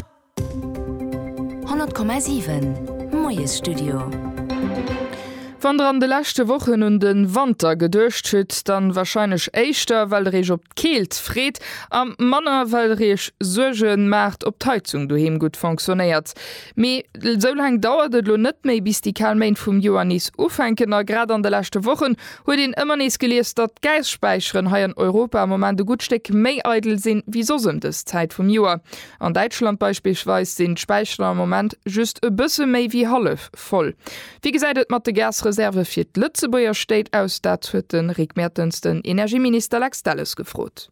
op. 100,7 Moiesstudio. Wann der an de leschte Wochen un de Wanter geduecht hutt, dann wahrscheinlech éischter well der iech op d'Keelt freet a manner well der iech Suerge maacht op d'Heizung doheem gutt fonctionnéiert. Mee esou laang dauert et elo net méi bis déi kal Méint vum Joer nees ufänken a grad an de leschte Wochen huet een ëmmer nees gelies datt d'Gässpäicheren hei an Europa am Moment e gutt Stéck méi eidel sinn wéi soss ëm dës Zäit vum Joer. An Däitschland beispillsweis sinn d'Späicher am Moment just e bësse méi wéi hallef voll. Wéi gesäit et mat de Gasreserve fir d'Lëtzebuerger Stéit aus? Dat huet de Rick Mertens den Energieminister Lex Delles gefrot.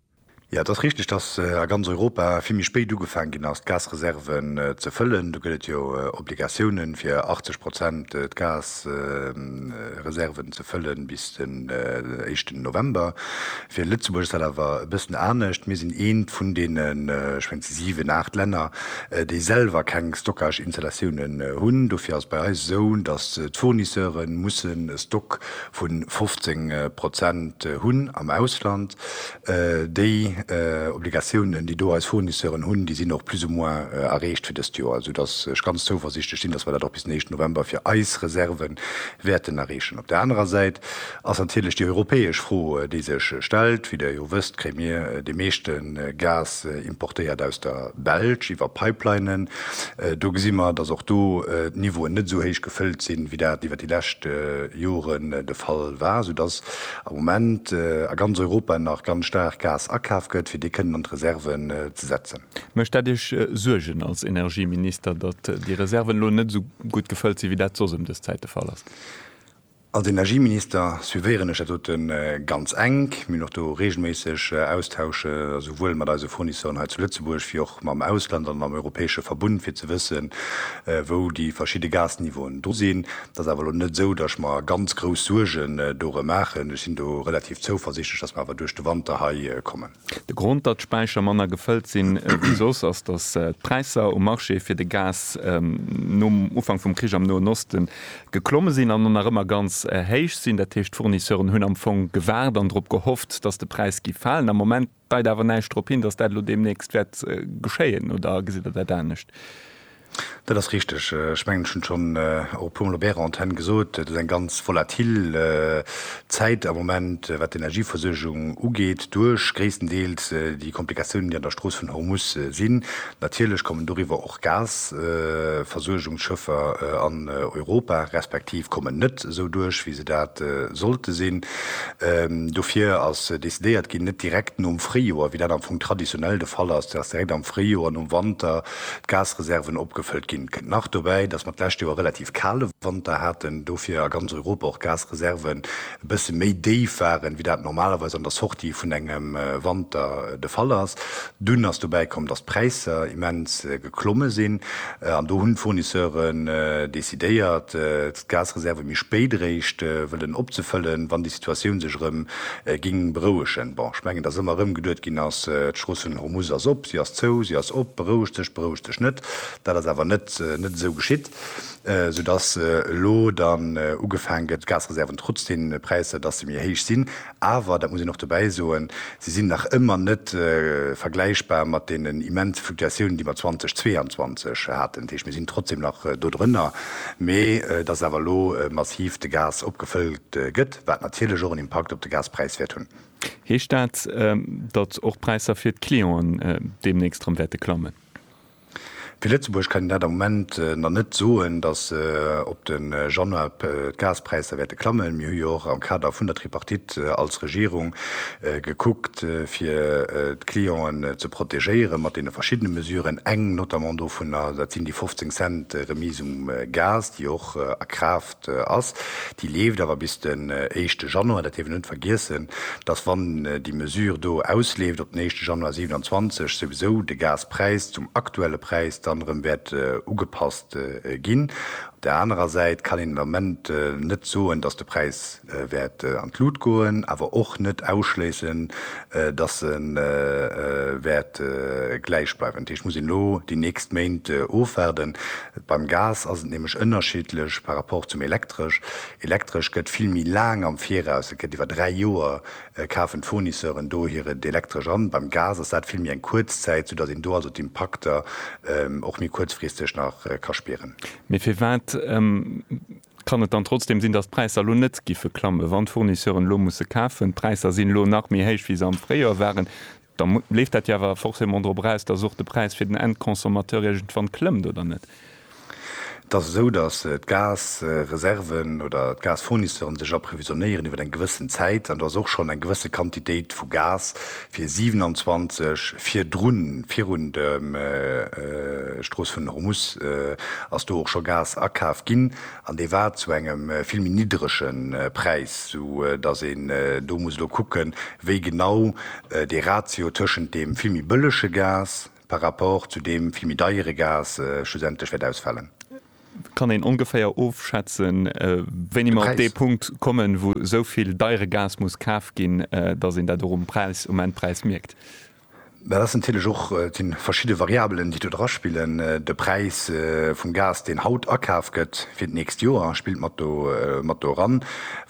Jo, et ass richteg, datt a ganz Europa vill méi spéit ugefaange ginn ass, d'Gasreserven ze fëllen. Do gëtt et jo Obligatiounen, fir 80 Prozent d'Gas Reserven ze fëllen bis den éischten November. Fir Lëtzebuerg ass dat awer e bëssen anescht. Mir sinn eent vun deenen, ech mengen, siwen, aacht Länner, déi selwer keng Stockage-Installatiounen hunn. Dofir ass et bei eis esou, datt d'Fournisseure mussen e Stock vu 15 Prozent hunn am Ausland. Déi Obligatiounen, déi do eis Fournisseuren hunn, déi sinn och plus ou moins erreecht fir dëst Joer, esoudass ech ganz zouversichtlech sinn, datt mer dat och bis den éischten November fir eis Reserve wäerten erreechen. Op der anerer Säit ass natierlech déi europäesch Fro, déi sech stellt. Wéi Der jo wësst, kréie mir dee meeschte Gas importéiert aus der Belsch iwwer Pipelinen. Do gesi mer, datt och do d'Niveauen net esou héich gefëllt sinn, wéi dat iwwer déi lescht Joren de Fall war, esoudass am Moment a ganz Europa nach ganz staark Gas akaf gëtt, fir dee kënnen an d'Reserven ze setzen. Mécht dat Iech Suergen als Energieminister, datt déi Reserven elo net esou gutt gefëllt sinn, wéi dat soss ëm dës Zäit de Fall ass? Als Energieminister suivéieren ech dat dote ganz enk. Mir hunn och do reegelméisseg Austausche souwuel mat eise Fournisseuren hei zu Lëtzebuerg wéi och mam Ausland an am europäesche Verbund, fir ze wëssen, wou déi verschidde Gasniveauen do sinn. Et ass awer elo net esou, datt ech mer ganz grouss Suergen dorëm maachen. Ech sinn do relativ zouversichtlech, datt mer awer duerch de Wanter hei kommen. De Grond, datt d'Späicher manner gefëllt sinn wéi soss, ass, datt d'Präisser um Marché fir de Gas nom Ufank vum Krich am Noen Oste geklomme sinn an nach ëmmer ganz héich sinn. Dat heescht, d'Fournisseuren hunn am Fong gewaart an drop gehofft, datt de Präis géif falen. Am Moment. Deit awer näischt drop hin, datt dat elo deemnächst wäert geschéien, oder gesitt Der dat anescht? Dat ass richteg. Ech mengen, ech hunn et schonn och e puermol op Ärer Antenn gesot, Et ass eng ganz volatil Zäit am Moment, wat d'Energieversuergung ugeet, duerch gréisstendeels déi Komplikatiounen, déi an der Strooss vun Hormus sinn. Natierlech kommen doriwwer och Gasversuergungsschëffer an Europa, respektiv kommen net. esou duerch wéi se dat sollte sinn. Dofir ass decidéiert ginn, net direkt nom Fréijoer, wéi dat am Fong traditionell de Fall ass, dass direkt am Fréijoer nom Wanter d'Gasreserven opgefëllt ginn. Et kënnt nach dobäi, dass mer d'lescht Joer e relativ kale Wanter haten, dofir a ganz Europa och d'Gasreserven e bësse méi déif waren, wéi dat normalerweis an der Sortie vun engem Wanter de Fall ass. Dunn ass dobäi komm, dass d'Präisser immens. beklomme sinn an do hunn d'Fournisseuren decidéiert d'Gasreserve méi spéit eréischt wëllen opzefëllen, wann déi Situatioun sech erëm géing berouegen. Bon, ech mengen, datt ëmmer erëm geduet ginn ass, d'Strooss vun Hormuz ass op, si ass zou, si ass op, beroueg dech, beroueg dech net. Dat ass awer net esou geschitt, sou datt elo dann ugefaang gëtt d'Gasreserven, trotz deene Präisser, datt se méi héich sinn, Awer, dat muss een och dobäi soen, se sinn nach ëmmer net vergläichbar mat deenen immense Fluktuatiounen, déi mer 2022 haten. Dat heescht, mir sinn trotzdem nach dodrënner, mee et ass awer elo massiv de Gas opgefëllt gëtt, wat natierlech och en Impakt op de Gaspräis wäert hunn. Heescht dat, datt och d'Präisser fir d'Clienten deemnächst erëm wäerte klammen? Fir Lëtzebuerg kann een dat am Moment nach net soen, datt op de Januar d'Gaspräisser wäerte klammen. Mir hu jo och am Kader vun der Tripartite als Regierung gekuckt, fir d'Clienten ze protegéiere mat deene verschiddene Mesuren. Eng notamment dovunner, dat sinn déi 15 Cent Remise um Gas, déi och a Kraaft ass, déi leeft awer bis den éischte Januar. Dat dierf een net vergiessen, dass wann déi Mesure do ausleeft op den éischte Januar 27, souwisou de Gaspräis zum aktuelle Präis dann erëm wäert ugepasst ginn. Op där anerer Säit kann een den Ament net soen, dass de Präis wäert an d'Lut goen, awer och net ausschléissen, dass e wäert gläich bleiwen. Dat heescht, muss een elo déi nächst Méint ofwaarden. Beim Gas ass et nämlech ënnerschiddlech par rapport zum Elektresch. Elektresch gëtt vill méi laang am Viraus, et gëtt iwwer dräi Joer kafen d'Fournisseuren do hiert Elektresch an. Beim Gas ass dat vill méi eng kuerz Zäit, soudatt een do also d'Impakter och méi kuerzfristeg nach ka spieren. Mee firwat Kann et dann trotzdem sinn, datt d'Präisser elo net giffe klammen, wann d'Fournisseuren elo musse kafen? D'Präisser sinn elo nach méi héich, wéi se am Fréijoer waren. Da leeft dat jo awer forcément drop eraus, datt och de Präis fir den Endconsommateur iergendwann klëmmt, oder net? Et ass esou, datt d'Gasreserven oder d'Gasfournisseuren sech approvisionnéieren iwwer eng gewëssen Zäit. An do ass och schonn eng gewësse Quantitéit vu Gas, fir 27 virdrun, virun der Strooss vun Hormus, ass do och scho Gas akaf ginn an dee war zu engem vill méi niddrege Präis, sou datt een do muss elo kucke wéi genau dee Ratio tëschent deem vill méi bëllege Gas par rapport zu deem vill méi deiere Gas schlussendlech wäert ausfalen. Kann een ongeféier ofschätzen, wéini mer op dee Punkt kommen, wou esou vill deiere Gas muss kaf ginn, datt een dat och um Präis, um Endpräis mierkt? Dat ass natierlech och, et si verschidde Variabelen, déi do draspillen. De Präis vum Gas, deen haut akaf gëtt fir d'nächst Joer, spillt mat do, mat do eran.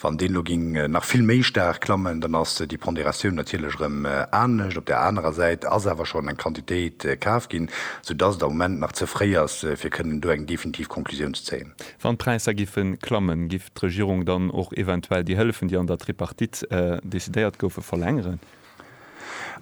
Wann deen elo géing nach vill méi staark klammen, dann ass déi Ponderatioun natierlech erëm anescht. Op där anerer Säit ass awer schonn eng Quantitéit kaf ginn. sou dass et am Moment nach ze fréi ass, fir kënnen do eng definitiv Conclusioun ze zéien. Wann d'Präisser giffe klammen, giff d'Regierung dann och eventuell déi Hëllefen, déi an der Tripartite decidéiert goufen, verlängeren?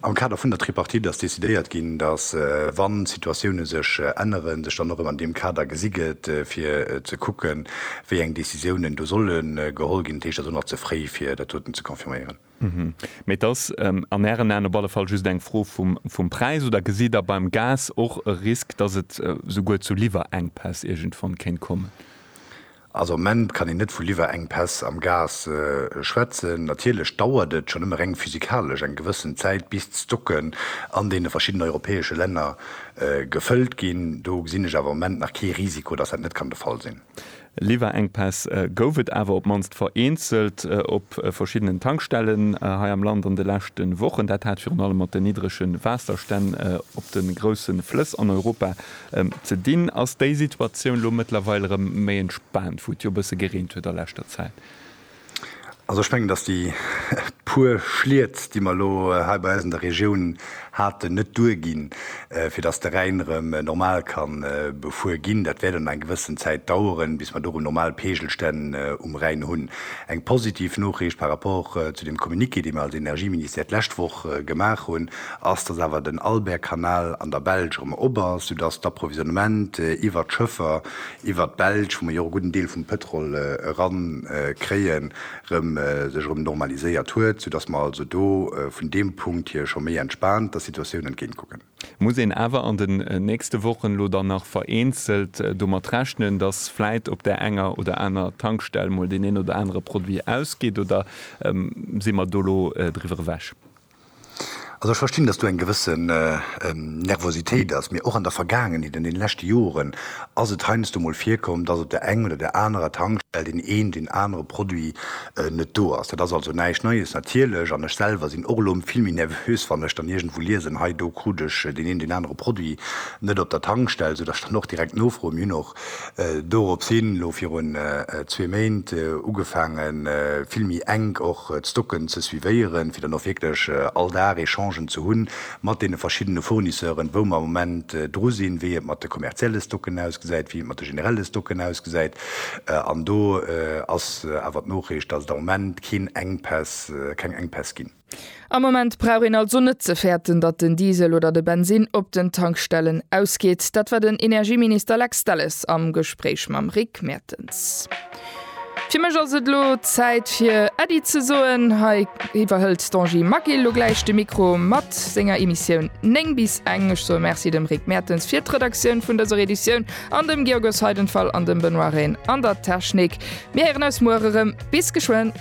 Am Kader vun der Tripartite ass decidéiert ginn, dass, wann d'Situatiounen sech änneren, sech dann och erëm an deem Kader gesi gëtt, fir ze kucken, wéi eng Décisiounen do solle geholl ginn. Dat heescht, et ass och nach ze fréi, fir dat doten ze confirméieren. Mee et ass an Ären Aen op alle Fall just eng Fro vum Präis, oder gesitt Der beim Gas och e Risk, dass et souguer zu Liwwerenkpäss iergendwann kéint kommen? Also am Moment kann een net vu Liwwerenkpäss am Gas schwätzen. Natierlech dauert et schonn ëmmer reng physikalesch eng gewëssen Zäit, bis d'Stocken an deene verschiddenen europäesche Länner gefëllt ginn. Do gesinn ech awer am Moment nach kee Risiko, dass dat net kann de Fall sinn. Liwwerenkpäss gouf et awer op d'mannst vereenzelt op verschiddenen Tankstellen hei am Land an de leschte Wochen. Dat hat virun allem mat den niddrege Waasserstänn op de grousse Flëss an Europa ze dinn. Ass déi Situatioun elo mëttlerweil erëm méi entspaant, wou et jo e bësse gereent huet a leschter Zäit? Also ech mengen, dass déi puer Schliet, déi mer elo hei bei eis an der Regioun haten, net duerginn, fir dass de Rhäin erëm normal ka befuer ginn. Dat wäert an eng gewëssen Zäit daueren, bis mer do erëm normal Peegelstänn um Rhäin hunn. Eng positiv Noriicht par rapport zu deem Communiqué, dee mer als Energieministère d'lescht Woch gemaach hunn, ass, dass awer den Albert-Kanal an der Belsch erëm op ass, soudass d'Approvisionnement iwwert d'Schëffer iwwert d'Belsch, wou mer jo och e gudden Deel vum Pëtrol erankréien, erëm sech erëm normaliséiert huet, soudass mer also do vun deem Punkt hier scho méi entspaant der Situatioun entgéint kucken. Muss een awer an den nächste Wochen elo dann nach vereenzelt domat rechnen, dass vläit op där enger oder aner Tankstell mol deen een oder anere Produit ausgeet, oder si mer do elo driwwer ewech? Also ech verstinn, dass do eng gewësse Nervositéit ass. Mee och an der Vergaangenheet, an deene leschte Joren ass et heiansdo mol virkomm, dass op der eng oder där anerer Tankstell deen een, deen anere Produit net do ass. Dat ass also näischt Neies natierlech. An ech selwer sinn och elo vill méi nervös, wann ech dann iergendwou liesen, hei do krut ech deen een, deen anere Produit net op der Tankstell, soudass ech dann och direkt nofroen. Mir hunn och Dorops hin, elo virun zwee Méint, ugefaange vill méi enk och d'Stocken ze suivéieren, fir dann och wierklech all Dag Echangen ze hu mat deene verschiddene Fournisseuren, wou mer am Moment dru sinn, wéi et mat de kommerzielle Stocken ausgesäit, wéi et mat de generelle Stocken ausgesäit. An do ass awer d'Noriicht, datt et am Moment keen Enkpäss, keng Enkpäss ginn. Am Moment brauch een also net ze fäerten, datt den Diesel oder de Bensinn op den Tankstellen ausgeet. Dat war den Energieminister Lex Delles am Gespréich mam Rick Mertens. Fir mech ass et elo Zäit fir Äddi ze soen. Hei iwwerhëlt d'Angie Magil elo gläich de Mikro mat senger Emissioun 9 bis eng. Ech soe Merci dem Rick Mertens fir d'Redaktioun vun dëser Editioun an dem Georges Heidenfall an dem Benoît Rehn an der Technik. Mir héieren eis muer erëm. Bis geschwënn.